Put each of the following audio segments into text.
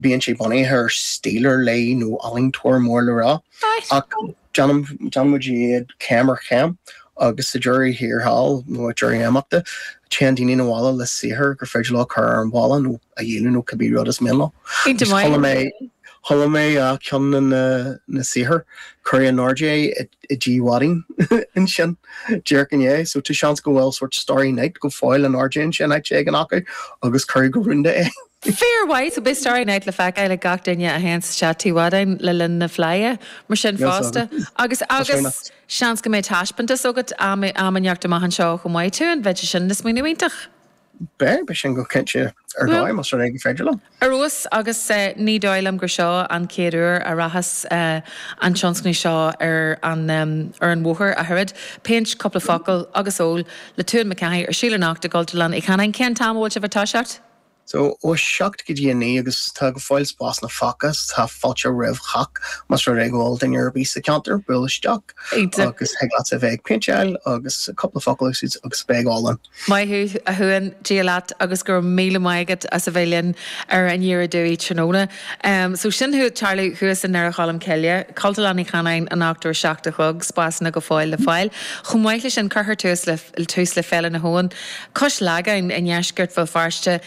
Bíonn sé bunaithe ar stíl ar leith nó ealaíontóir mór le rá ach déanann déanann muid iad céim ar chéim agus sa deireadh thiar thall nó ag deireadh imeachta téann daoine 'na bhaile le saothar gur féidir leo cur ar an bhalla nó a dhíoladh nó cibé rud is mian leo. Agus chuala mé chuala mé ceann de na na saothair cuireadh in airde é i dTigh Mhadáin ansin déarfainn inné so tá seans go bhfuil sórt Starry Night go fóill in airde ansin áit éigin acu agus cuireadh go rúnda é. Fíormhaith, so beidh Starry Night le feiceáil ag gach duine a théann isteach Tigh Mhadáin le linn na Fleidhe, mar sin Yes, fosta. agus Agus, tá sé agus, nach. seans go mbeidh taispeántas agat am, am inteacht amach anseo chomh maith Tuan. B'fhéidir, sin smaoineamh iontach. Beidh, beidh sin go cinnte ar Bhuel. dóigh, más rud é go féidir liom. Ar fheabhas, agus eh, ní dóigh liom gur seo an chéad uair a rachas eh, an tionscnamh seo ar an, em, ar an bhóthar ach oiread. Péint, cúpla focal agus ól le Tuan McCarthy ar siúl anocht i gCultúrlann Uí Chanáin. Cén t-am a bhfuil sibh ag toiseacht? So, ó 7 go dtí 9 agus tá go fóill spásanna fágtha so tá fáilte roimh chách más rud é go bhfuil duine ar bith sa cheantar buail isteach agus thig leat a bheith ag péinteáil agus cúpla focal a úsáid agus bheith ag ól linn. Maith thú, a Thuain, Dia leat agus go raibh míle maith agat as a bheith linn ar Aniar Aduaidh tráthnóna. So, sin ag tarlú thuas i nDoire Cholm Cille, Cultúrlann Uí Chanáin anocht ó 7 a chlog, spásanna go fóill le fáil. Chomh maith le sin, cuirfear tús le Féile na hAbhann, Cois Lagáin i ndeisceart Bhéal Feirste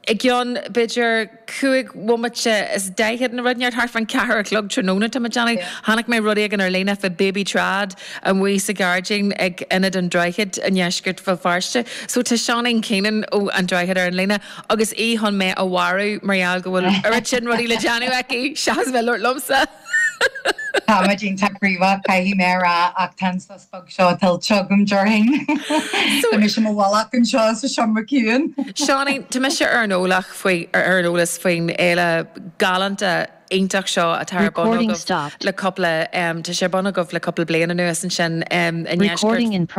i gceann, b'fhéidir, cúig bhomaite is daichead nó rud inteacht, thart fán ceathair a chlog tráthnóna, tá mé ag déanamh. Chonaic mé rud éigin ar líne fá Baby Trad amuigh sa ghairdín ag Ionad an Droichid i ndeisceart Bhéal Feirste. So tá Seáinín Keenan ó An Droichead ar an líne agus í chun mé a mharú mar gheall go bhfuil oiread sin rudaí le déanamh aici seachas bheith ag labhairt liomsa! Tá mé iontach gníomhach, caithfidh mé a rá, ach tá an sos beag seo tuillte agam déarfainn. Tá mise i bhfolach anseo sa seomra ciúin. Seáinín, tá mise ar an eolas faoin fhéile galánta iontach seo atá ar bun agaibh le cúpla, tá sé ar bun agaibh le cúpla bliain anuas ansin i ndeisceart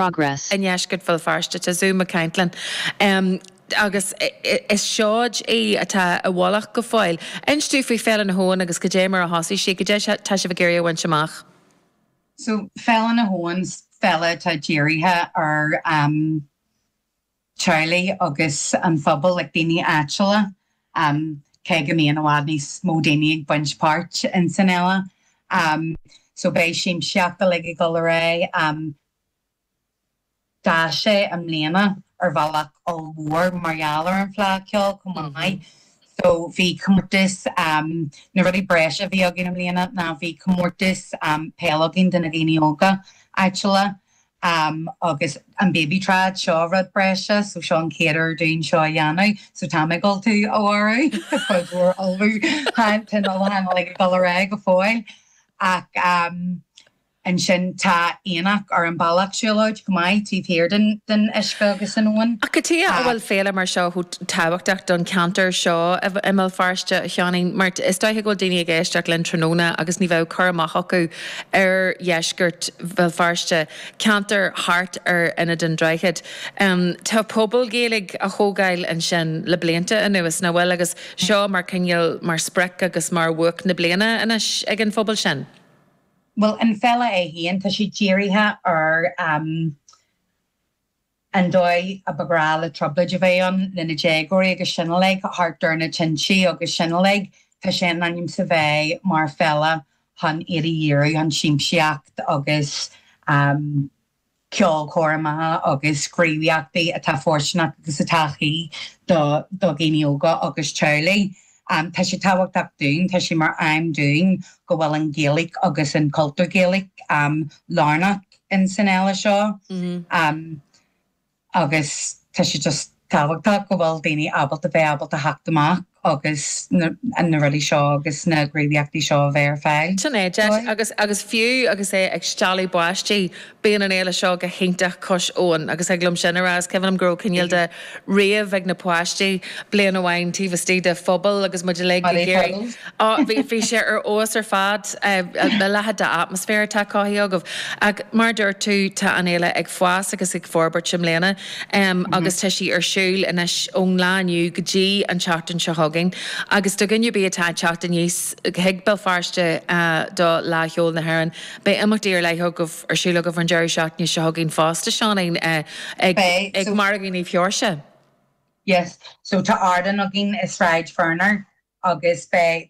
Bhéal Feirste, Tá Zú Mac Ceintleann. agus is seoid í atá i bhfolach go fóill. Inis dúinn faoi Féile na hAbhann agus cad é mar a thosaigh sí, cad é atá sibh ag iarraidh a bhaint amach. So Féile na hAbhann, féile atá dírithe ar am theaghlaigh agus an phobal, like daoine áitiúla, am cé go mbíonn i bhfad níos mó daoine ag baint páirt in san fhéile. Am so beidh siamsaíocht uilig ag dul ar aghaidh. D'fhás sé i mbliana ar bhealach ollmhór mar gheall ar an Fleá Ceoil chomh maith. So bhí comórtas, na rudaí breise a bhí againn i mbliana ná bhí comórtas peile againn do na daoine óga áitiúla agus an Baby Trad seo rud breise so seo an chéad uair dúinn seo a dhéanamh so tá muid ag ullmhú a Mhárú, cuid mhór ullmhúcháin, tá an t-ullmhúchán uilig ag dul ar aghaidh go fóill ach. Ansin tá aonach ar an bealach siúlóid chomh maith taobh thiar den uisce agus an abhainn. Ach cad chuige a bhfuil féile mar seo chomh tábhachtach don cheantar seo i mBéal Feirste, a Sheáinín, mar is dóiche go bhfuil daoine ag éisteacht linn tráthnóna agus ní bheadh cur amach acu ar dheisceart Bhéal Feirste, ceantar thart ar Ionad an Droichid. Tá pobal Gaeilge á thógáil ansin le blianta anuas, nach bhfuil? Agus seo mar chineál, mar sprioc agus mar bhuaic na bliana anois ag an phobal sin. bhuel, an fhéile é féin, tá sé dírithe ar an dóigh a ba ghnách le trioblóid a bheith ann le na déagóirí agus sin uilig, thart ar na tintí agus sin uilig. Tá sé in ainm is a bheith mar fhéile chun iad a dhíriú chun siamsaíocht agus. ceolchoirmeacha agus gníomhaíochtaí atá fóirsteanach agus atá cuí do dhaoine óga agus teaghlaigh. Tá sé tábhachtach dúinn, tá sé mar aidhm dúinn go bhfuil an Ghaeilge agus an cultúr Gaeilge lárnach in san fhéile seo. agus tá sé just tábhachtach go bhfuil daoine ábalta bheith ábalta theacht amach agus na rudaí seo agus na gníomhaíochtaí seo a bheith ar fáil Sin é, deis. dóibh. Agus agus fiú agus é ag stealladh báistí, bíonn an fhéile seo go hiontach cois abhann agus thig liom sin a rá. Is cuimhin liom go raibh cineál de rave ag na páistí bliain amháin taobh istigh de phuball agus muid uilig ag iarraidh Ó, bhí, bhí sé ar fheabhas ar fad. A leithéid d'atmaisféar atá cothaithe agaibh. Ach mar a dúirt tú, tá an fhéile ag fás agus ag forbairt i mbliana agus tá sí ar siúl anois ón lá inniu go dtí an tseachtain seo chugainn. Agus do dhuine ar bith atá ag teacht aníos chuig Béal Feirste do Fhleá Cheoil na hÉireann, beidh imeachtaí ar leith agaibh, ar siúl agaibh an deireadh seachtaine seo chugainn fosta, Seáinín, ag, Beidh, ag so, Margadh Naomh Seoirse. yes, so tá ardán againn i Sráid Verner agus beidh.